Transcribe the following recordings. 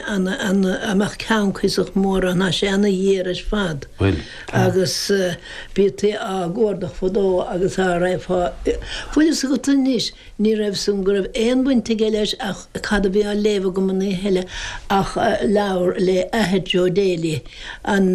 an mbeadh ceann cuíosach mór ann tá sé ana ghéar ar fad agus bhítí á gcuardach fadó agus á raibh fá bhfuil fhios agat anois ní raibh san go raibh aon bhaint aige leis ach cad a bhí á léamh agam an oíche eile ach leabhar le athair Joe Daly an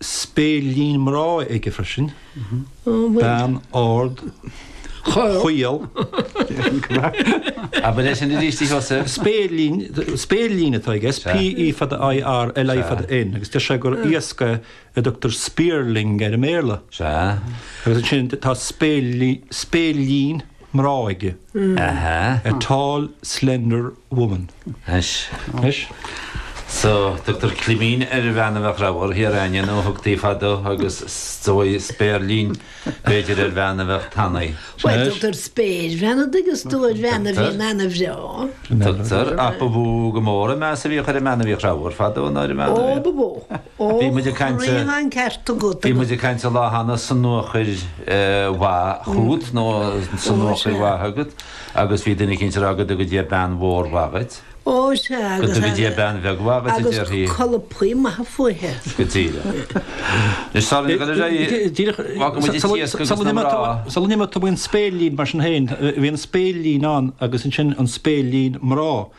spéirlín mná aige freisin, bean ard chaol. Abair é sin arís, a Sheosaimh. Spéirlín, spéirlín atá aige, S, P, E fada I, R, L, I fada N, agus deir sé gur iasc é a dtugtar spearling air i mBéarla. Sea. Agus ansin tá spéirlín. mná aige, a tall slender woman. Anois, so, tugtar climín ar bhean a bheadh ramhar, thiar againne nó thugtaí fadó agus is dóigh, spéirlín, b'fhéidir ar bhean a bheadh tanaí. Bhuel, tugtar spéirbhean an dtuigeann tú ar bhean a bhíonn ana-bhreá. Tugtar, ach ba mhó go mór an meas a bhíodh ar an mbean a bhíodh ramhar fadó ná ar an bhean a bhíodh. Ó, ba mhó. Ó, níl an ceart agat. Bhí muid ag caint an lá cheana sonuachar mhaith chugat nó sonuachar mhaith agat agus bhí duine éicint ag rá go dtuga Dia bean mhór mhaith dhuit. Ó, sea agus. Go dtuga Dia bean bheag mhaith dhuit a déarfaí. Agus colpaí maithe fúithe. Go díreach. Anois tá muid ag dul ar aghaidh. Díreach. Fágfaidh muid iad síos go dtí na mná. Sa loinnir mar a tugadh an spéirlín mar sin féin, bhí an spéirlín ann agus ansin an spéirlín mná.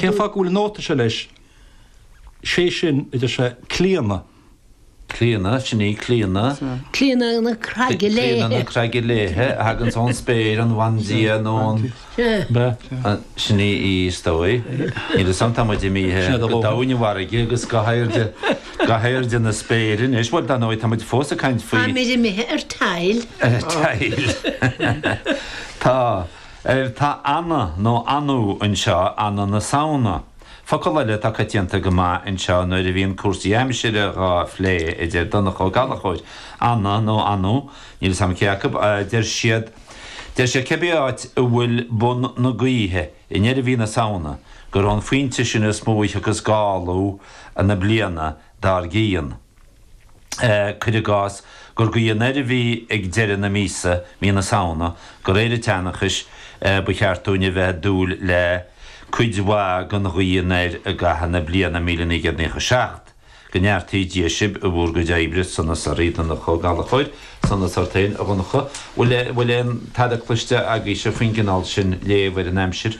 Cén fáth go bhfuil an nóta seo leis, sé sin, a deir sé Clíona. Clíona, sin í, Clíona. Clíona na Craige Léithe. Clíona na Craige Léithe a thaganns ón spéir, an bhandia nó an. Sin í, í, is dóigh. Níl 'fhios a'm, tá muid imithe go doimhne na farraige agus go hairde, go hairde na spéire anois, bhuel, dar ndóigh, tá muid fós ag caint faoi. Táimid imithe ar tile. Ar tile. Tá. Ar Tá Anna nó Anu anseo Anna na Samhna. Focal eile atá coitianta go maith anseo nuair a bhíonn cúrsaí aimsire dhá phlé a deir Donncha Ó Gallachóir, Anna nó Anu? Níl 'fhios a'm cé acu. Deir siad, deir siad cibé áit a bhfuil bun na gaoithe i ndeireadh mhí na Samhna gur ón phointe sin is mó a thiocfas gála na bliana dár gcionn. cuir i gcás, gur gaoth anoir a bhí ag deireadh na míosa, mí na Samhna, de réir an tseanchais ba cheart dúinn a bheith ag dúil le cuid mhaith den ghaoth anoir i gcaitheamh na bliana míle naoi gcéad naocha seacht. Go neartaí Dia sibh i bhur gcuid oibre, sonas oraibh, Donncha Ó Gallachóir. Sonas ort féin, a Dhonncha. Bhfuil aon tada cloiste agaibhse faoin gcineál sin léamh ar an aimsir?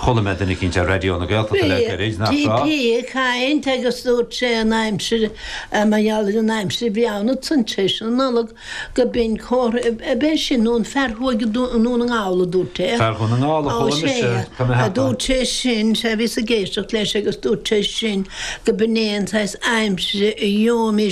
Chuala mé duine eicínt ar Raidió na Gaeltachta le gairid nach raibh. Bhí sé ag caint agus dúirt sé an aimsir, mar gheall ar an aimsir a bhí ann i dtimpeall na Nollag, go mbíonn comhartha ab é sin nó an fear a chuaigh go Dún na nGall a dúirt é. Fear Dhún na nGall a chuala mise, tá mé a cheapadh. Dúirt sé sin, sea, bhíos ag éisteacht leis agus dúirt sé sin go mbíonn aon saghas aimsire a gheobhaimis.